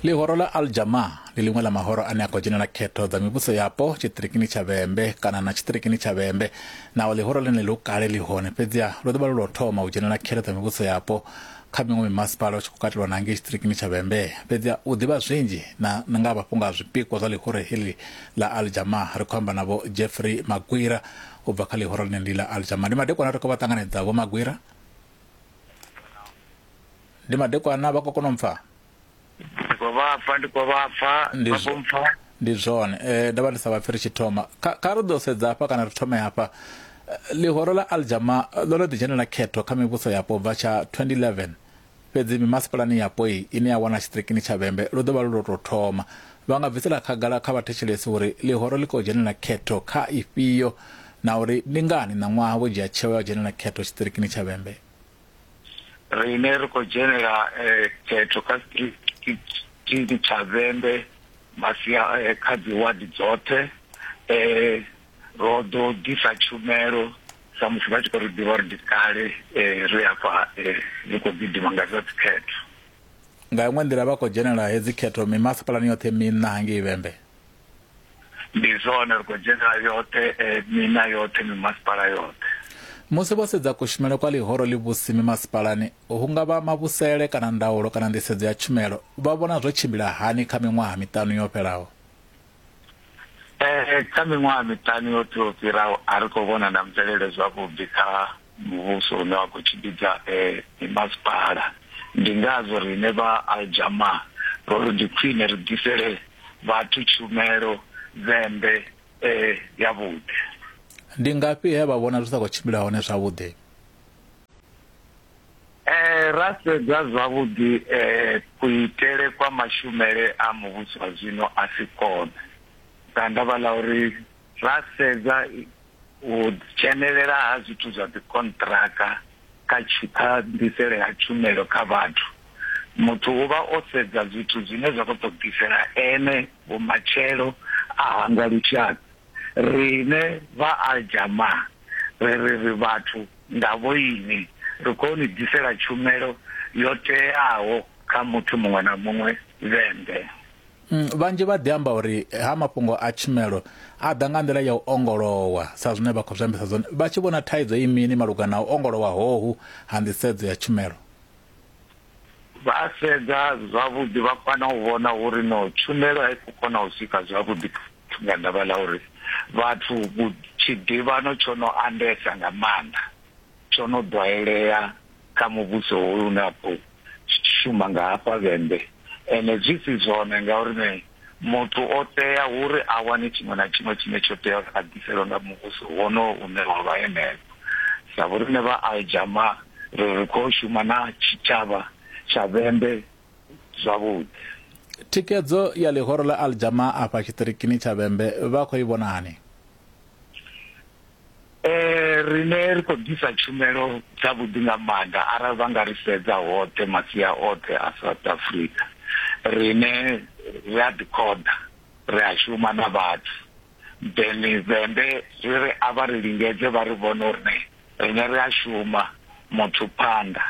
ḽihoro ḽa aljama ḽi ḽiṅwe ḽa mahoro ane a khou dzhenela khetho dza mivhuso yapo tshiṱirikini tsha vhembe kana na tshiṱirikini tsha vhembe naho ḽihoro ḽine ḽi kale ḽi hone fhedziha ḽo ḓo vha ḽo thoma u dzhenela khetho dza mivhuso yapo kha miṅwe mimasipala u tshi khou katelwa na ngei tshiṱirikini tsha vhembe fhedziha u ḓivha zwinzhi na nga mafhungo a zwipikwa zwa ḽihoro heḽi ḽa aljama ri khou amba navho jeffrey magwira u bva kha ḽihoro ḽine ndi ḽa aljama ndi madekwana ri khou vha ṱanganedza vho magwira ndi madekwana vha khou kona u pfha ndi khou vha pfha ndi khou vha pfha Ndi vha zwo- khou mpfha ndi zwone eh ndavha ndi sa vha pfiri tshithoma kha kha ri ḓo sedza hafha kana ri thome hafha Eh, ḽihoro ḽa aljama eh, ḽo no ḓi dzhenela khetho kha mivhuso yapo bva tsha 2011 fhedzi mimasipalani yapo iyi ine ya wana tshiṱirikini tsha vhembe lu ḓo vha lu lwo tou thoma vha nga bvisela khagala kha vhathetshelesi uri ḽihoro ḽi khou dzhenela khetho kha ifhio na uri ndi ngani ṋaṅwaha vho dzhia tsheo ya u dzhenela khetho tshiṱirikini tsha vhembe riṋe ri khou dzhenela khetho kha tshigidi tsha vhembe masia kha dzi wadi dzoṱhe ro ḓo ḓisa tshumelo sa musi vha tshi khou ri ḓivha uri ndi kale ri afha ri khou gidima nga zwa dzikhetho. Nga iṅwe nḓila vha khou dzhenela hedzi khetho mimasipalani yoṱhe miṋa hangei vhembe. ndi zwone ri khou dzhenelela yoṱhe eh, mina yoṱhe mimasipala yoṱhe musi vho sedza kushumele kwa ḽihoro ḽi vhusi mimasipalani hu nga vha mavhusele kana ndaulo kana nḓisedzo ya tshumelo vha vhona zwo tshimbila hani kha miṅwaha miṱanu yo fhelaho Eh, kha miṅwaha miṱanu yoṱhe yo fhiraho a ri khou vhona na mvelele zwavhuḓi kha muvhuso une wa khou tshimbidza mimasipala. Ndi ngazwo riṋe vha Al Jamaa ro ri ndi khwine ri ḓisele vhathu tshumelo dzembe yavhuḓi. Ndi ngafhi he vha vhona zwi sa khou tshimbila hone zwavhuḓi? Ra sedza zwavhuḓi, kuitele kwa mashumele a muvhuso wa zwino a si kone nga ndavha ḽa uri, ra sedza u dzhenelela ha zwithu zwa dzikonṱiraka kha kha nḓisele ha tshumelo kha vhathu muthu u vha o sedza zwithu zwine zwa khou ṱoḓisela ene vhumatshelo a hangwa lushaka rine vha aljama ri ri ri vhathu nga vhoini ri khou ni ḓisela tshumelo yo teaho kha muthu muṅwe na muṅwe vhembe Mm, vhanzhi vha ḓi amba uri ha mafhungo a tshumelo a ḓa nga nḓila ya u ongolowa sa zwine vha khou zwi ambisa zwone vha tshi vhona thaidzo i mini malugana na u ongolowa hohu ha nḓisedzo ya tshumelo vha sedza zwavhuḓi vha kwana u vhona uri no tshumelo a i khou kona u swika zwavhuḓi nga ndavha ḽa uri vhathu tshiḓivhano tsho no andesa nga maanḓa tsho no ḓwaelea kha muvhuso hoyu une a khou tshi tshi shuma nga hafha vhembe ende zwi si zwone ngauri ne muthu o tea uri a wane tshiṅwe na tshiṅwe tshine tsho tea uri a ḓiselwe nga muvhuso wonowo une wa vha henefho sa vhoriṋe vha aljama ri ri khou shuma na tshitshavha tsha vhembe zwavhuḓi thikedzo ya ḽihoro ḽa aljama afha tshiṱirikini tsha vhembe vha khou i vhonani Eh rine ri khou ḓisa tshumelo dza vhuḓi nga maanḓa arali vha nga ri sedza hoṱhe masia oṱhe a South Africa rine ri a ḓi khoḓa ri a shuma na vhathu then vhembe ri ri a vha ri lingedze vha ri vhone uri ne rine ri a shuma muthu phanḓa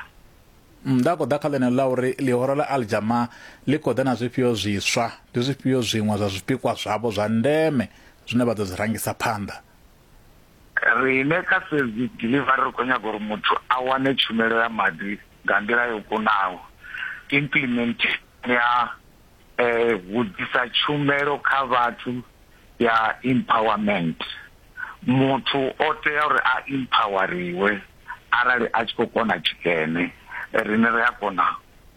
nda khou ḓa kha ḽeneḽo ḽa uri ḽihoro ḽa aljama ḽi khou ḓa na zwifhio zwiswa ndi zwifhio zwiṅwe zwa zwipikwa zwavho zwa ndeme zwine vha ḓo zwi rangisa phanḓa Riṋe kha Save Delivery ri khou nyaga uri muthu a wane tshumelo ya maḓi nga nḓila yo kunaho, implementation ya u ḓisa tshumelo kha vhathu ya empowerment. Muthu o tea uri a empower-riwe arali a tshi khou kona tshikene, riṋe ri a kona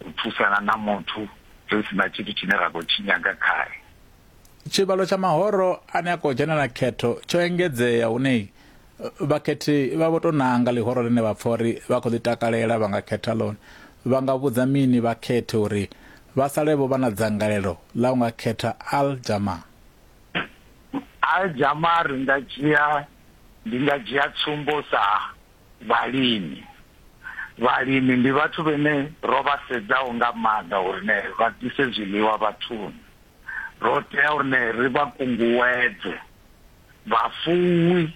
u thusana na muthu ri si na tshithu tshine ra khou tshi nyaga khae. tshivhalo tsha mahoro ane a khou dzhenela khetho tsho engedzea hune vhakhethi vha vho tou nanga ḽihoro ḽine vha pfa uri vha khou ḽi takalela vha nga khetha ḽone vha nga vhudza mini vhakhethi uri vha sale vho vha na dzangalelo ḽa u nga khetha al jama al jama ri nga dzhia ndi nga dzhia tsumbo sa Vhalimi. Vhalimi ndi vhathu vhene ro vha sedzaho nga maanḓa uri ne vha ḓise zwiḽiwa vhathuni. Ro tea uri ne ri vha kunguwedze. Vhafuwi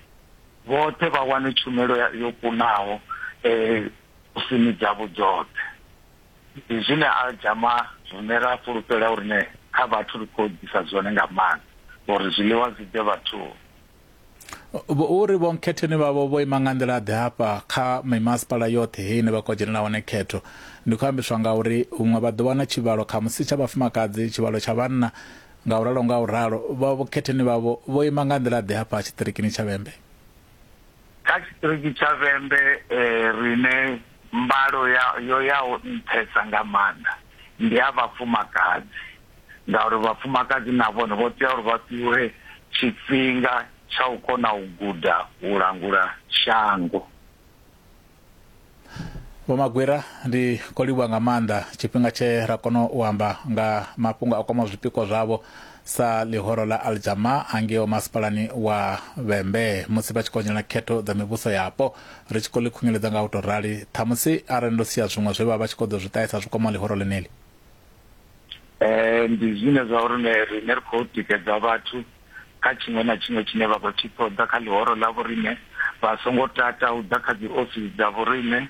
vhoṱhe vha wane tshumelo yo kunaho kusini dzavho dzoṱhe. Ndi zwine Al Jama rine ra fhulufhela uri ne kha vhathu ri khou ḓisa zwone nga maanḓa uri zwiḽiwa zwi ḓe vhathuni. uri vho nkhetheni vhavho vho ima nga nḓila ḓe hafha kha mimasipala yoṱhe hei ine vha khou dzhenela hone khetho ndi khou ambiswa nga uri huṅwe vha ḓo wana tshivhalo kha musi tsha vhafumakadzi tshivhalo tsha vhanna nga u ralo nga u ralo vha vhukhetheni vhavho vho ima nga nḓila ḓe hafha tshiṱirikini tsha vhembe kha tshiṱiriki tsha vhembe eh, rine mbalo yo yaho nṱhesa nga maanḓa ndi ya vhafumakadzi ngauri vhafumakadzi na vhone vho tea uri vha fhiwe tshifhinga tsha u kona u guda u langula shango. Vho Magwira, ndi khou livhuwa nga maanḓa tshifhinga tshe ra kona u amba nga mafhungo a kwamaho zwipikwa zwavho sa ḽihoro ḽa Al Jamaa hangeo masipalani wa Vhembe musi vha tshi khou onyela khetho dza mivhuso yapo. Ri tshi khou ḽi khunyeledza nga u tou rali, ṱhamusi arali ndo sia zwiṅwe zwe vha vha tshi khou ḓo zwi ṱahisa zwi kwamaho ḽihoro ḽeneḽi. eh, ndi zwine zwa uri ne rine ri khou tikedza vhathu kha tshiṅwe na tshiṅwe tshine vha khou tshi ṱoḓa kha ḽihoro ḽa vhorine vha songo tata u ḓa kha dzi ofisi dza vhorine um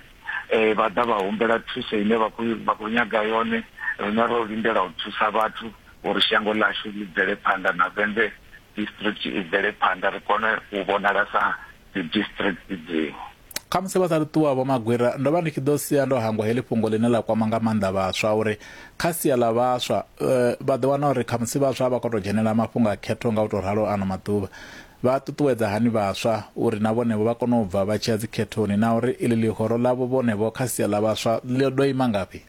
eh, vha ḓa vha humbela thuso ine vha khou nyaga yone rine ro lindela u thusa vhathu uri shango ḽashu ḽi bvele phanḓa na vende district i bvele phanḓa ri kone u vhonala sa dzidistrict dziṅwe. Khamusi vha sa ri ṱuwa Vho Magwira, ndo vha ndi tshi ḓo sia ndo hangwa heḽi fhungo ḽine ḽa kwama nga maanḓa vhaswa uri kha sia ḽa vhaswa vha ḓo wana uri khamusi vhaswa a vha khou tou dzhenelela mafhungo a khetho nga u tou ralo ano maḓuvha. Vha ṱuṱuwedza hani vhaswa uri na vhonevho vha kone u bva vha tshi ya dzikhethoni na uri iḽi ḽihoro ḽavho vhonevho kha sia ḽa vhaswa ḽi ḓo ima ngafhi?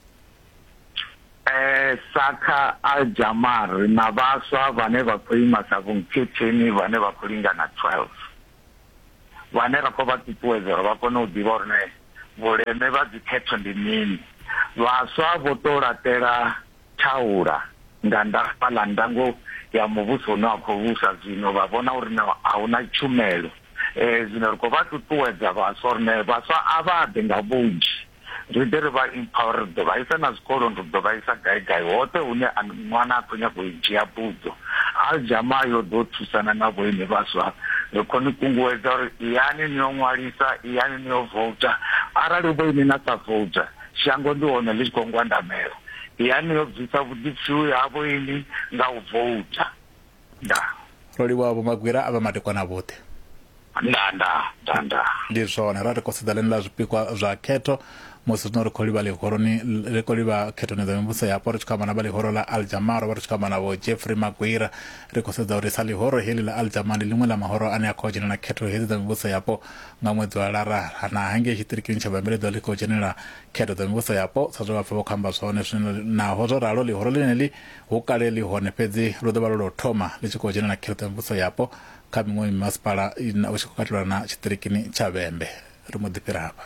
Eh, Saka Aljamar ri na vhaswa vhane vha khou ima sa vhunkhetheni vhane vha khou lingana 12 vhane ra khou vha ṱuṱuwedza uri vha kone u ḓivha uri ne vhuleme vha dzikhetho ndi mini. Vhaswa vho tou laṱela thaula nga ndafha ḽa ndango ya muvhuso une wa khou vhusa zwino, vha vhona uri no a hu na tshumelo. Eh, zwino ri khou vha ṱuṱuwedza vhaswa uri ne vhaswa a vha ḓe nga vhunzhi. ri ḓe ri vha empower ri ḓo vha isa na zwikoloni ri ḓo vha isa gai gai hoṱhe hune ṅwana a khou nyaga u dzhia buḓo aljama yo ḓo thusana na vhoine vhaswa ri khou ni kunguwedza uri iyani ni yo ṅwalisa iyani ni yo vouta arali vhoine na sa vouta shango ndi hone ḽi tshi khou ngwandamela iyani yo bvisa vhuḓipfiwi ha vhoini nga u vouta nda Rolivhuwa vho magwira a vha madekwana vhoṱhe. nda nda nda nda Ndi zwone ra ri khou sedza ḽine ḽa zwipikwa zwa khetho musi zwino ri khou livha ḽihoroni ri khou livha khethoni dza mivhuso yapo ri tshi khou amba na vha ḽihoro ḽa Aljamar ro vha ri tshi khou amba na vho Jeffrey Magwira ri khou sedza uri sa ḽihoro heḽi ḽa Aljamar ndi ḽiṅwe ḽa mahoro ane a khou dzhenela khetho hedzi dza mivhuso yapo nga ṅwedzi wa lara na hangei tshiṱirikini tsha vhambeledzo ḽi khou dzhenela khetho dza mivhuso yapo sa zwe vhapfa vha khou amba zwone zwino naho zwo ralo ḽihoro ḽeneli Hu kale ḽi hone, fhedzi ḽo ḓo vha lwa lwa u thoma ḽi tshi khou dzhena na kheṱho ya muvhuso yapo kha miṅwe mimasipala, hu tshi khou katelwa na tshiṱirikini tsha Vhembe. Ri mbo ḓi fhira hafha.